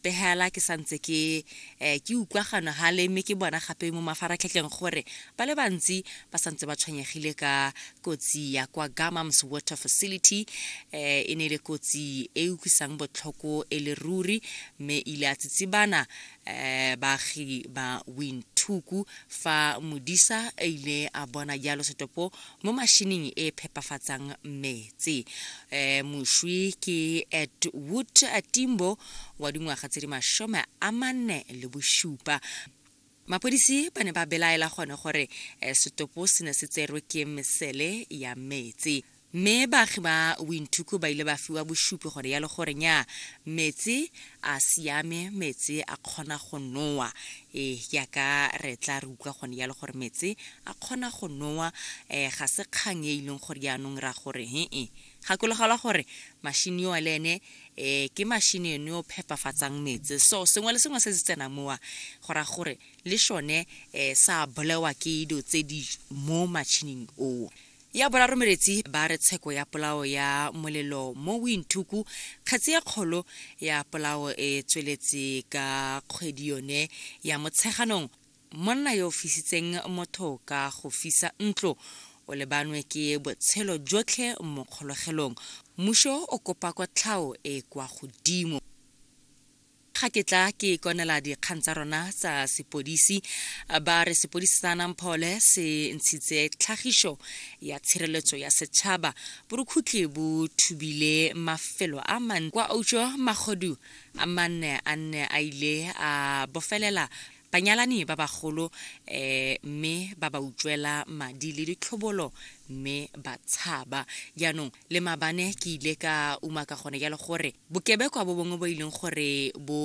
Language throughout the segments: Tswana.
pegela ke santse ke eh, ke utlwa gano gale mme ke bona gape mo mafaratlhatlheng gore ba le bantsi ba santse ba tshwenyegile ka kotsi ya kwa gamams water facility eh, e ne e le kotsi e utlwisang botlhoko e le ruri mme ile a tsitsibana eh baagi ba winthuku fa modisa a ile a bona jalo setopo mo mashining e phepafatsang metsi eh, mošwi ke edwood timbo wa dingwaga tse di mashome a manne le bošupa mapodisi ba ne ba belaela gone gore eh, setopo se ne se tserwe ke mesele ya metsi mme baagi ba winthuku ba ile ba fiwa bosupi gore ya le gore nya metsi a siame metsi a kgona go nowa Ee, jaaka re tla re utlwa gone jalo gore metse a kgona go nowa, um ga se kgang e e leng gore jaanong ra gore he-e. Gakologelwa gore machine yowa le ene um ke machine yone yo phepafatsang metse. So sengwe le sengwe se se tsenang mowa go raya gore le sone um sa bolewa ke dilo tse di mo matšhining oo. Ya boraro meretsi ba re tsheko ya polao ya molelo mo Windhoek, kgetsi e kgolo ya polao e tsweletse ka kgwedi yone ya Motsheganong. Monna yo o fisitseng motho ka go fisa ntlo o lebanwe ke botshelo jotlhe mo kgologelong. Mmuso o kopa kotlhao e e kwa godimo. Ga ke tla ke ikonela dikgang tsa rona tsa sepodisi, ba re sepodisi sa Namphole se ntshitse tlhagiso ya tshireletso ya setšhaba. Borukhutlhi bo thubile mafelo a mantsi kwa Ojo, magodu a manne a nne a ile a bofelela banyalani ba bagolo mme ba ba utswela madi le ditlhobolo mme ba tshaba. Jaanong le mabane ke ile ka uma ka gone jalo gore bokebekwa bo bongwe bo e leng gore bo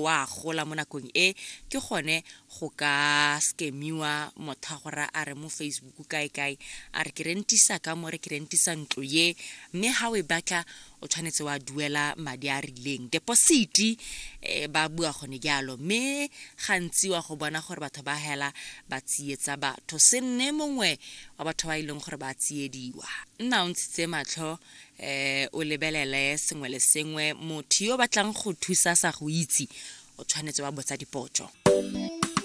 wa gola mo nakong e ke gone go ka scamiwa motho a gore a re mo facebook kae kae a re ke rentisa ka mo re ke rentisa ntlo ye mme ga o e batla o tshwanetse wa duela madi a rileng depositi eh, ba bua gone jalo mme gantsi wa go bona gore batho ba hela ba tsietsa batho se nne mongwe wa batho ba e leng gore ba tsiediwa nna o ntshitse matlho um o lebelele sengwe le sengwe motho yo o batlang go thusa sa go itse o tshwanetse wa botsa dipotso